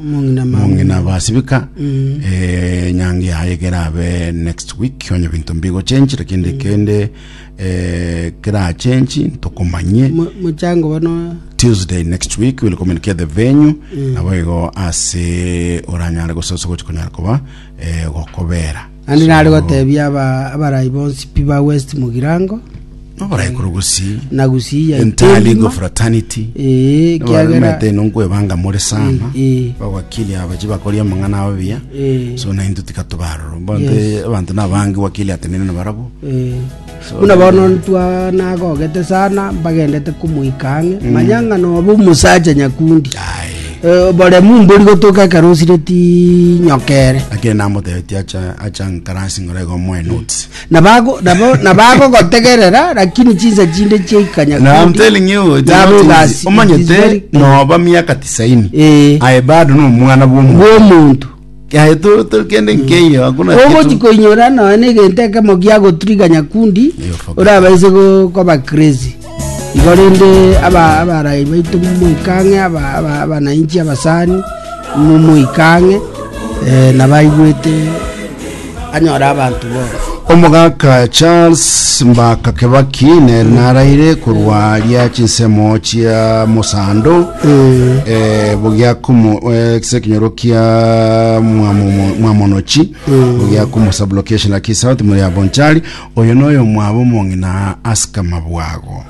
Omong'ina mama. mong'ina abasibika eh, nyangi yaye kerabe next week onye binto mbigochenji lakini kende eh, kerachenji ntokomanyie Mo- Mochango bono tuesday next week will communicate the venue nabo igo ase oranyare gososa gochi konyara koba eh, gokobera Naende nare goteebia abarai bonsi pi ba West Mugirango, Noborai korwa gusii. na gusii ya Entirely Itendima. go fraternity. Ee, ekiagera Mete ino nkwebanga more sana. Eh, eh. Abawakili aba chibakoria amang'ana abo buya. Eh. So nainto tiga tobaroro. Bonde Yes. abanto nabange wakili atenene na barabo. eh, Buna bono ntwa nagogete sana mbagendete komoika ang'e, manya ng'a nobe omosacha nyakundi. Eh, Oboremu mbori gotoka ekero osireti nyokere. lakini namotebetie acha acha nkarasi ng'ora igo moe notes Nabago nabo nabagogotegerera lakini chinsa chinde chiaika Now I'm nyakundi. telling you, it's Yabo not easy. igasi- igasi- omanyete noba miaka tisaini Eh. aye bado nomwana bwomuntu bw'omuntu Aye to- to- kende nkeiyo hakuna kitu. ogochikoinyora nonya na egento ekemo giagoturiganya kundi Eyo focus. orabaise go- koba crazy igo rende aba- abarai baito moikang'e aba- aba- abananchi abasani mo- moikang'e eh, nabaigwete anyore abanto bonsi. Omogaka Charles Mbaka Kebaki nere naraire korwa aria chinsemo chia mosando eh, bogiakomo eh, kise kinyoro kia mwamomo- mwamonochi bogiakomo sublocation laki south muri abonchari oyo noyo mwabo mong'ina asika mabwago